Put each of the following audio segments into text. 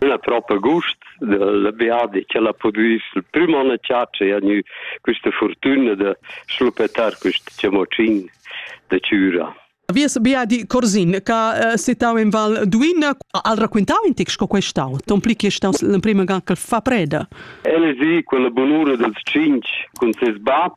Ella propa gust dal viadi ch'ella ha pudü sil prüm on a chatscha e ha gnü quista furtüna da schluppetar quist chamocin da chüra. Vies viadi Corsin, che eh, situau in Val Duina, al racquintau in tic sco questau? Ton pli che stau l'emprima ga che fa preda. El è sì quella bunura dels cinc cun ses bab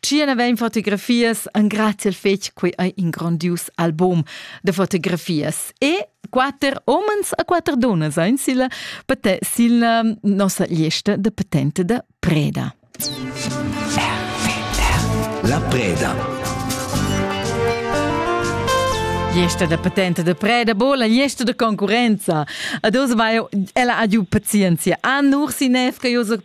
Tschien avein fotografias engraziel fetg quei ei in grandius album de fotografias e quater omens a quater donas ein silla pate silla nossa liesta de patente de Preda. La Preda Gliesta da patente de preda, bo la gliesta de concurenza. Ados vai ella adiu pazienzia. A nur si nef che io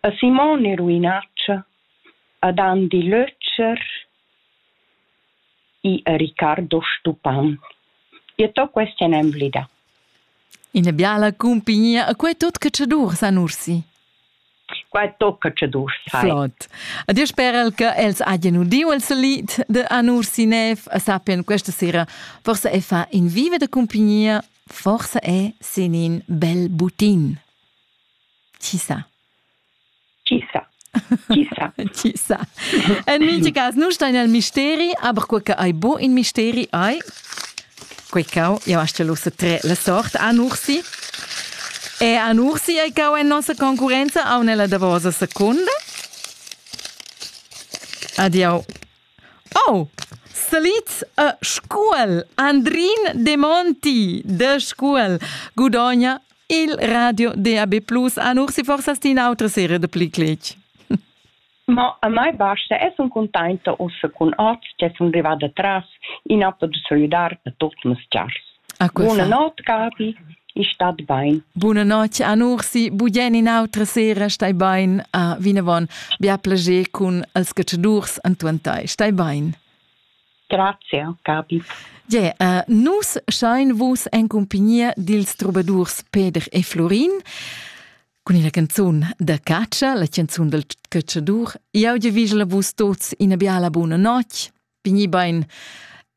A Simon e Ruinatscha, ad Andi Lötscher, i a Ricardo Stupan. Io t'ho quest en emblidà. Ina biala cumpignia. E quei tut catschadurs han ursi. Qua tocca tschadurs. Flot. A dir sperel che els hajan udiu il salit de Anursi Nev e sappian questa sera, forse è fa in viva de cumpignia, forse è sin in bel butin. Chi sa? Chi sa? Chi sa? Chi sa? En mintga cas, nu stai nel misteri, aber quei che hai bu in misteri hai. Quei cau, ja hast ja lusse tre le sort an ursi. E an ursi ei cau en nossa concurenza au nella davosa seconda. Adiau. Oh! Salids e Scuol. Andrin Demonti de Scuol gudogna il radio DAB Plus an Ursi forsas ti un'autra serie de pli cletg. Ma a mai basta e sun contenta ussa cun oz che sun rivada tras in ato de solidar da tot mes chars. Bunanotte, Gabi. Ich stat bein. Bunanotte, Anursi. Bugen in'autra sera stai bein a vinavon. Bia plager cun els catschadurs antuantai. Stai bein. Grazie, Gabi. Yeah, uh, nus schein vus en compagnia dils trobadurs Peder e Florin cun ina canzun da caccia, la canzun del cacciadur. Jau vi la vus tots ina biala buona notg. pigni bein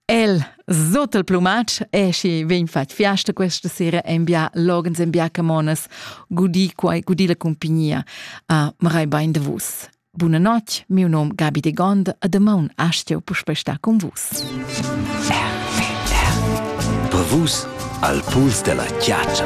El sot il plumatsch e schi vegn fatg fiasta questa sera en bia logens en bia camonas gudi quai gudi la compagnia a marai bein de vus Buna notte, meu nome Gabi de Gonda, a demaun astio puspe sta con vus. Vus al puls della chiaccia.